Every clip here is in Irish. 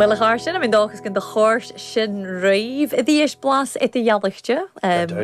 Bhuel, a chàirdean, tha mi an dòchas gun do chòrd sin ribh a-rithist blas eadar-dhealaichte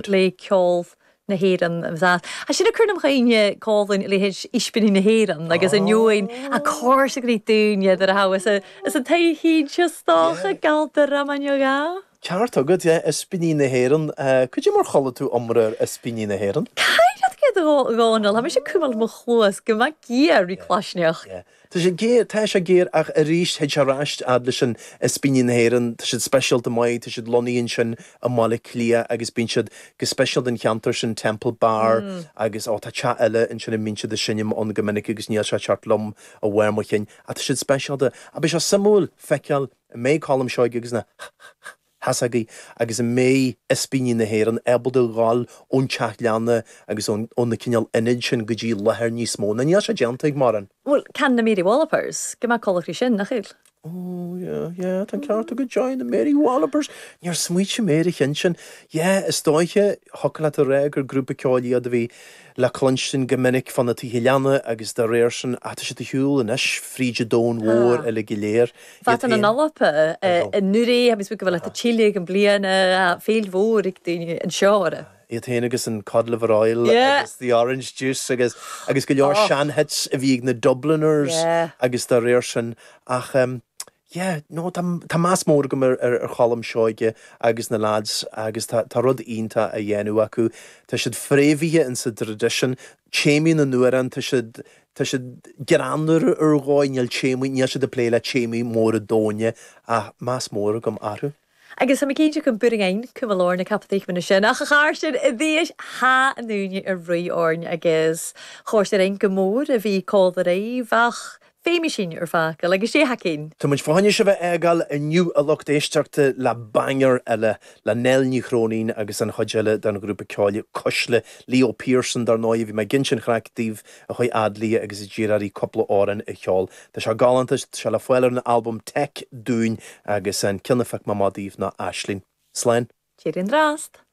le ceol na hÉireann? Sea, sin a cuireann chugainn còmhla ris Ispíní na hÉireann agus an fhuaim a cóir sa gcrích dúinne nuair a thabharfas as an taobh thinn seo, is dócha, galta Romagnoc, a? Ceart agat, yeah, Ispíní na hÉireann. Cad é mar chuala tú iomrá ar Ispíní na hÉireann? Ceart agad, a Dhónall? Tha mise a' cumail mo chluas gu math geur ri claisneachd. Yeah. Tá sé géar, tá sé géar ach aríst théid sé ar ais fhad leis an Ispíní na hÉireann, tá siad speisialta maith, tá siad lonnaithe ansin i mBaile Átha Cliath agus bíonn siad go speisialta fán cheantar sin, Temple Bar agus ó tá teach eile ansin a mbíonn siad a' seinm ann go minic agus níl sé ag teacht liom de bharr mo chinn ach tá siad speisialta. Ach beidh sé suimiúil feiceáil an mbeidh Colm Seoige agus na ha ha ha! Theasaigh agus an mbeidh Ispíní na hÉireann ábalta dhul ón teach leanna agus ón ón na cineál ionaid sin go dtí láthair níos mó. Nó níl sé déanta ag mórán. Bhuel, can na Mary Wallopers, gu math coltach ri sin, nach eil? Ó, yeah, yeah, tá an ceart agat, Joy, na Mary Wallopers! Níor smaoitigh mé ar an cheann sin. Yeah, is dóiche, thiocfadh leat a rá gur grúpa ceoil iad a bhí, le cluinstin go minic fá na tithe leanna agus dá réir sin atá siad ar shiúl anois fríd an domhan mhór uilig go léir, bha iad ann an Alba an-uiridh, agus bhí go bhfuil tha iad a' tilleadh am-bliadhna, fèill mhòr aig daoine an seo orra. Aye, iad féin agus an Cod Liver Oil agus the Orange Juice agus, agus go leor sean-hits a bhí ag na Dubliners agus dá réir sin ach, Yeah, no, tá tá meas mór agam ar ar ar Cholm Seoige agus na leaids agus tá tá rud iontach á dhéanamh acu. Tá siad fréamhaithe in sa traidisiún. Téamaí na n-amhrán, tá siad tá siad greannmhar ar dhóigh, níl téamaí níl siad ag plé le téamaí móra doimhne ach meas mór agam orthu. Agus tha mi cinnteach go gcuirfidh cuma lár na caipitlíchme na sin, ach a chàirdean a-rithist tha an ùine air ruith oirnn agus chòrd e rinn gu mòr a bhith còmhla ribh ach feumaidh sinn ur fàgail agus sé ha cinn. Tá muid fá choinne sibh a fhágáil inniu a lucht éisteachta le banger eile le Nell Ní Chróinín agus an chuid eile den ghrúpa ceoil Cuisle, Leo Pearson dar ndóigh, bhí mé ag insint an chraic daoibh a chuaigh fhad léi agus a d'iarr uirthi cúpla amhrán a cheol. Tá sé galánta, tá sé le fáil ar an albam Tech Duinn agus an ceann a phioc mé amach daoibh ná Aisling. Slán! Tìoraidh an-dràsta!